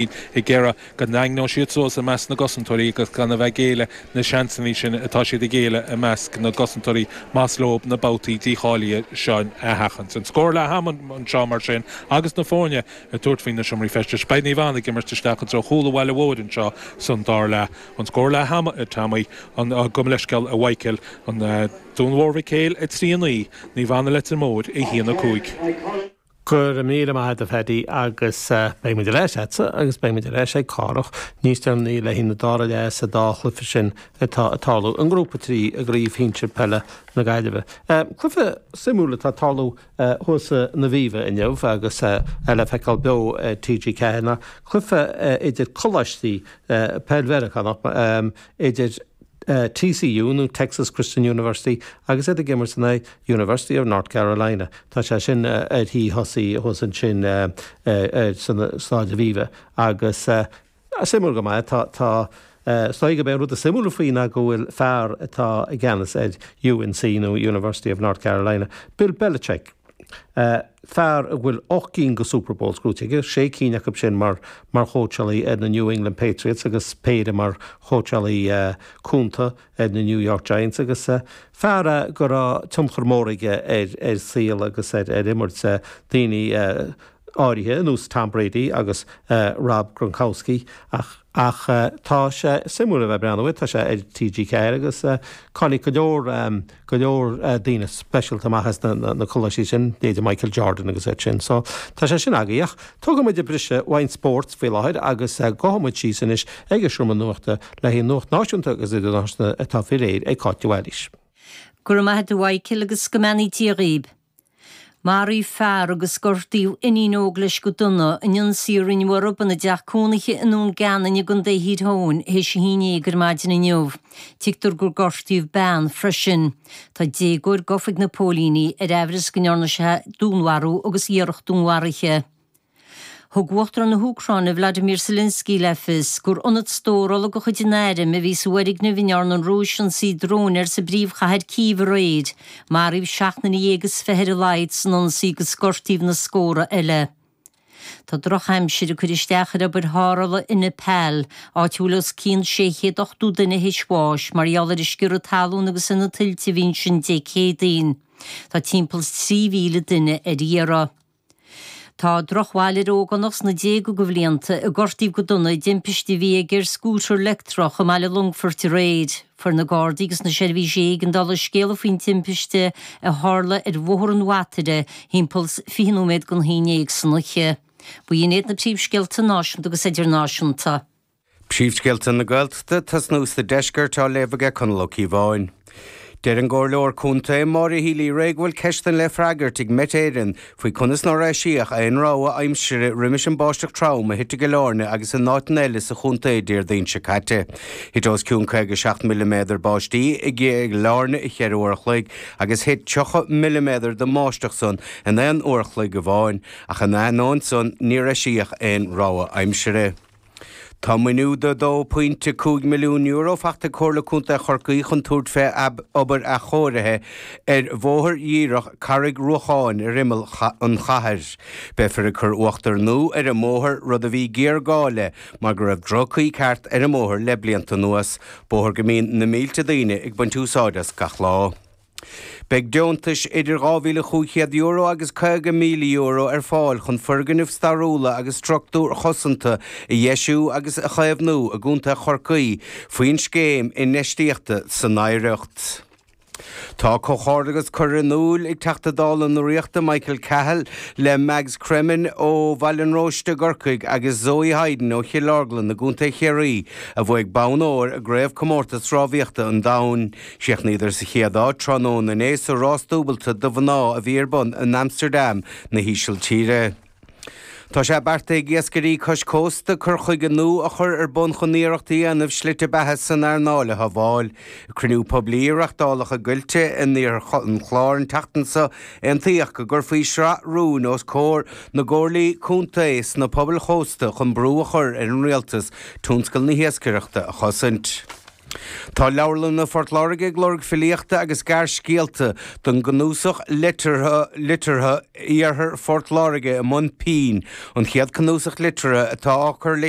iad ag iarraidh go ndaingneodh siad suas i measc na gcosantóirí agus gan a bheith ag géilleadh na seansanna sin atá siad ag géilleadh i measc na gcosantóirí más leo na babhtaí dícháilithe seo a sheachaint. An scór le ham anseo, mar sin, agus na foirne ag tabhairt faoi na seomraí feistis. Beidh Naomh Anna ag imirt isteach i dtreo chúl an bhaile mhóir anseo san dara leath. An scór le ham, a Tommy. Gabh mo leithscéal, a Mhichael. Dún Mór Mhic Éil 3, 9, Naomh Anna Leitir Móir 1, 5. Go raibh míle maith a't a Phaddy agus beidh muid ar ais a'dsa agus beidh muid ar ais ag Cárthach níos deireanaí le haghaidh an dara leath sa dá chluife sin atá ag tarlú i ngrúpa 3 i gcraobh shinsir peile na Gaillimhe. Cluife suimiúil atá ag tarlú thuas san Aviva inniu agus é le feiceáil beo ar TG4 ná cluife idir coláistí peil Mheiriceánach idir TCU nó Texas Christian University agus iad ag imirt in aghaidh University of North Carolina. Tá sé sin ar tí tosaí thuas ansin san Stáid Aviva agus suimiúil go maith tá, tá, is dóigh gurb é an rud is suimiúla faoi ná go bhfuil fear atá i gceannas ar UNC nó University of North Carolina, Bill Belichick, fear a bhfuil ocht gcinn go Super Bowls crochta aige, sé cinn acu sin mar, mar chóitseálaí ar na New England Patriots agus péire mar chóitseálaí cúnta. ar na New York Giants agus fear go raibh tionchar mór aige ar shaol agus ar imirt daoine áirithe, ar nós Tom Brady agus Rob Gronkowski. Ach tá sé suimiúil a bheith ag breathnú air, tá sé ar TG4 agus tháinig go leor. go leor daoine speisialta amach as na coláistí sin, leithéidí Michael Jordan agus iad sin. So, tá sé sin agaidh ach tógfaidh muid briseadh ón spórt faoi láthair agus gabhfaidh muid síos anois ag an seomra nuachta le haghaidh nuacht náisiúnta agus idirnáisiúnta atá faoi réir ag Cáit Uí Mhailís. Go raibh maith agat a Mhichael agus go mbeannaí Dia dhaoib. Maraíodh fear agus gortaíodh iníon óg leis go dona in ionsaí a rinneadh orthu ina dteach cónaithe i nDún Geanainn i gContae Thír Eoghain théis a haon dhéag ar maidin inniu. Tuigtear gur gortaíodh bean freisin. Tá déagóir gafa ag na póilíní ar aimhreas go ndearna sé dúnmharú agus iarracht dúnmharaithe. Thug Uachtarán na hÚcráine Vladimir Zelensky le fios gur ionad stórála de chuid an airm a bhí sa bhfoirgneamh a ndearna an Rúis ionsaí dróin air sa bpríomhchathair Cív aréir. Maraíodh seacht nduine dhéag is fiche ar a laghad san ionsaí agus gortaíodh na scóra eile. Tá drochaimsir ag cur isteach ar obair tharrthála i Nepal, áit a bhfuil os cionn sé chéad ochtó duine théis bháis mar gheall ar an sciorradh talún agus ar na tuilte a bhí ansin Dé Céadaoin. Tá timpeall is trí mhíle duine ar iarraidh. Tá drochbhail ar ógánach sna déaga de bhlianta a gortaíodh go dona i dtimpiste a bhí aige ar scútar leictreach i mBaile Longfoirt aréir. Fuair na Gardaí agus na seirbhísí éigeandála scéala faoin timpiste a tharla ar Bhóthar an Bhataire thimpeall 20 nóiméad chun a haon déag san oíche. B'in iad na príomhscéalta náisiúnta agus idirnáisiúnta. Príomhscéalta na Gaeltachta, ag tosnú sa Deisceart, á léamh aige Conall Ó Cíobháin. Deir an Comhairleoir Contae, Maura Healy-Rae go bhfuil ceisteanna le freagairt ag Met Éireann faoi conas nár eisíodh aon rabhadh aimsire roimis an báisteach trom a thit i gCill Áirne agus in áiteanna eile sa chontae Déardaoin seo caite. Thit os cionn 57 milliméadar báistí i gCill Áirne i cheithre uair a chloig agus thit 30 milliméadar den mbáisteach san in aon uair a chloig amháin, ach in ainneoin san, níor eisíodh aon rabhadh aimsire. Tá maoiniú de €2.5 milliún faighte ag Comhairle Contae Chorcaí chun tabhairt fé obair athchóirithe ar bhóthar díreach Charraig Ruacháin ar imeall an chathair. Beifear ag cur uachtar nua ar an mbóthar, rud a bhí géarghá le mar go raibh droch-chaoi ceart ar an mbóthar le blianta anuas, bóthar go mbíonn na mílte daoine ag baint úsáid as gach lá. Beidh deontais idir €2,500 agus €50,000 ar fáil chun foirgnimh stairiúla agus struchtúir chosanta a dheisiú agus a chaomhnú i gContae Chorcaí faoin Scéim Infheistíochta san Oidhreacht. Tá comhghairdeachas curtha in iúl ag Teachta Dála na Ríochta, Michael Cahill, le Mags Cremin ó Bhaile an Róiste i gCorcaigh agus Zoe Hyde ó Chill Orglan i gContae Chiarraí a bhuaigh bonn óir i gCraobhchomórtas Rámhaíochta an Domhain Chríochnaíodar sa chéad áit tráthnóna inné sa rás dúbailte do mhná a bhí ar bun in Amsterdam na hÍsiltíre. Tá sé beartaithe ag iascairí cois cósta cur chuige nua a chur ar bun chun iarracht a dhéanamh slite beatha san earnáil a shábháil. Ag cruinniú poiblí a reachtáladh i gCoillte in Iarthar an Chláir an tseachtain seo aontaíodh go gcuirfí sraith rúin os comhair na gcomhairlí contae sna pobail chósta chun brú a chur ar an rialtas tionscal na hiascaireachta a chosaint. Tá leabharlanna Phort Láirge ag lorg filíochta agus gearrscéalta don gcnuasach liteartha Iarthar Phort Láirge i mBun Pinn, an chéad cnuasach liteartha atá á chur le